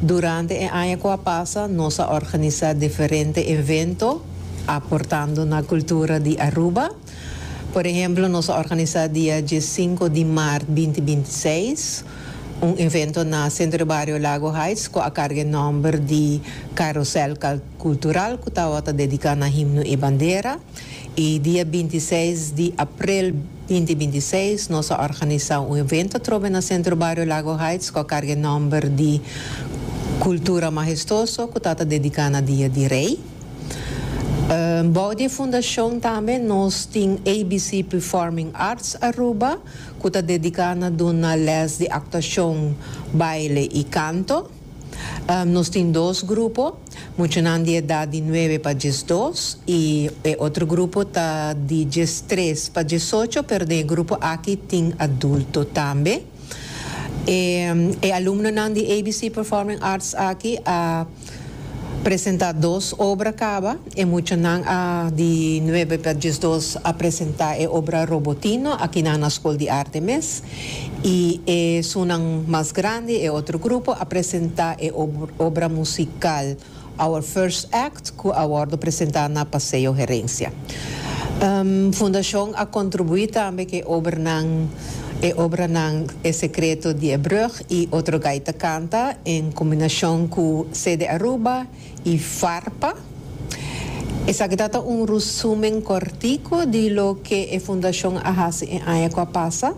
Durante e aña ku a pasa nos a organisá diferente evento aportando na kultura di Aruba. Por ehemplo nos a organisá dia dje sinku di mart binti binti i seis un evento na Centro de Barrio Lago Heights ku a karga e nòmber di Carusel Cultural ku tabata dediká na himno i bandera. I dia binti seis di aprel binti binti i seis nos a organisá un evento atrobe na Centro Barrio Lago Heights ku a karga e nòmber di Cultura Majestuoso ku ta ta dediká na Dia di Rei. Bou di e fundashon tambe nos tin ABC Performing Arts Aruba ku ta dediká na duna lès di aktuashon, baile i kanto. Nos tin dos grupo, muchanan di edat di nuebe pa diesdos y e otro grupo ta di diestres pa diesocho pero den e grupo aki tin adulto tambe. E e alumnonan di ABC Performing Arts aki a presenta dos obra caba. E muchanan a di nuebe pa diesdos a presenta e obra Robotino akinan na Skol di Arte mes i e sunan mas grandi, e otro grupo, a presenta e obra musikal Our First Act ku a wòrdu presenta na Paseo Herencia. Fundashon a kontribuí tambe ku e obranan, e obranan E Sekreto di e Brùg i Otro Gaita Kanta en kombinashon ku CD Aruba, y Farpa. Esaki ta ta un rusumen cortico di loke e Fundacion a haci e aña cu a pasa.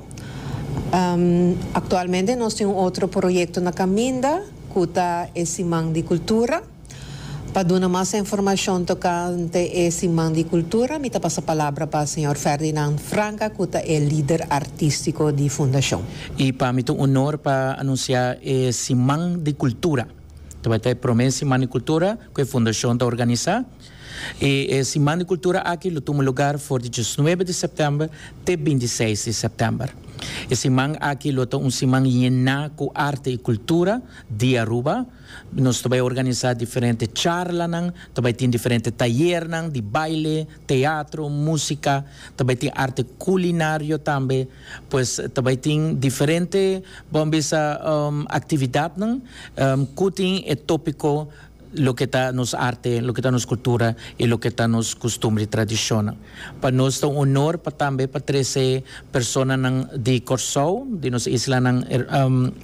Actualmente nos tin un otro proyecto na caminda cu ta e Siman di Cultura. Pa duna mas informacion tocante e Siman di Cultura mi ta pasa palabra pa señor Ferdinand Franca cu ta e lider artistico di Fundacion. Y pa mi ta un honor pa anuncia e Siman di Cultura. Ta bai ta e prome Siman di Kultura ku e Fundashon ta organisá. I e Siman di Kultura aki lo tuma lugar for di diesnuebe di sèptèmber te binti seis di sèptèmber. E siman aki lo ta un siman yená ku arte i kultura di Aruba. Nos ta bai organisá diferente charlanan, ta bai tin diferente tayernan di baile, teatro, músika, ta bai tin arte kulinario tambe. Pues ta bai tin diferente bo a bisa actividadnan cu tin e topico loke ta nos arte, loke ta nos cultura y loke ta nos costumbre y tradicionnan. Pa nos ta un honor pa tambe pa trece personanan di Corsou, di nos islanan,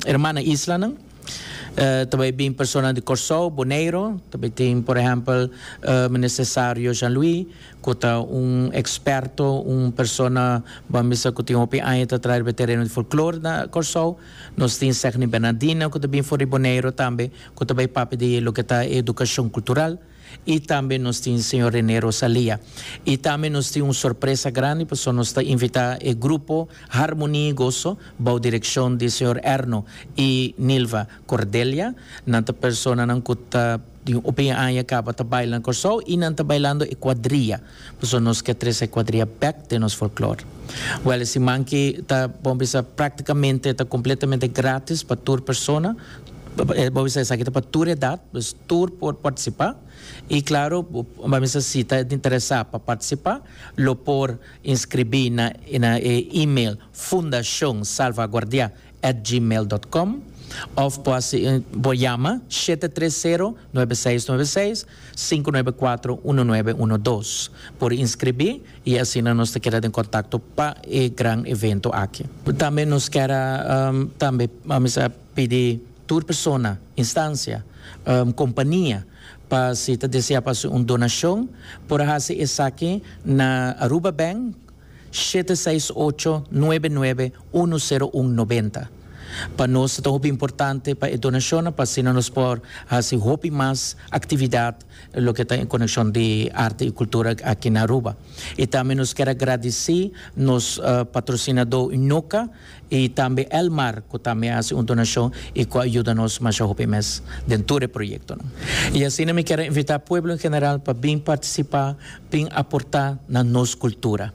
hermana islanan. Ta bay bin personanan di Corsou, Boneiro, ta bay tin por ehempel Meneer Cesario Jean Louis cu ta un experto, un persona bo a misa cu tin hopi aña ta traha riba e tereno di folklore na Corsou. Nos tin Segni Bernardina cu ta bin for di Boneiro tambe, cu ta bay papia di loke ta e educacion cultural. Y tambe nos tin Señor Rene Rosalia. Y tambe nos tin un sorpresa grandi pasobra nos ta invita e grupo Harmonia y Gozo bou direccion di Señor Erno y Nilva Cordelia. Nan ta personanan cu ta den hopi aña caba ta baila na Corsou y nan ta bailando e cuadrilla. Pasobra nos ke trese kuadria bèk den nos folklor. Wèl e siman ki ta, bo bisa, práktikamente ta kompletamente grátis pa tur persona. Bo bisa esaki ta pa tur edat, dus tur por partisipá. I klaru, bo a bisa si ta interesá pa partisipá, lo por inskribí na na e email fundacionsalvaguardia@gmail.com òf bo a por yama shete tres sero, nuebe seis, nuebe seis. sinku nuebe kuatro unu nuebe unu dos por inskribí i asina nos ta keda den kontakto pa e gran evento aki. Tambe nos kier a tambe a pidi tur persona, instansia, kompania pa si ta desea pa hasi un donashon por a hasi esaki na Aruba Bank, shete seis ocho, nuebe nuebe, unu sero un nobenta. Pa nos ta hopi importante pa e donashonnan pa asina nos por hasi hopi mas aktividat loke ta en konekshon di arte i kultura aki na Aruba. I tambe nos kier a gradisí nos patrosinadó Unoca, Y tambe Elmar cu tambe a haci un donacion y cu a yuda nos masha hopi mes den tur e proyectonan. Y asina mi kier a invita pueblo en general pa bin participa, bin aporta na nos cultura.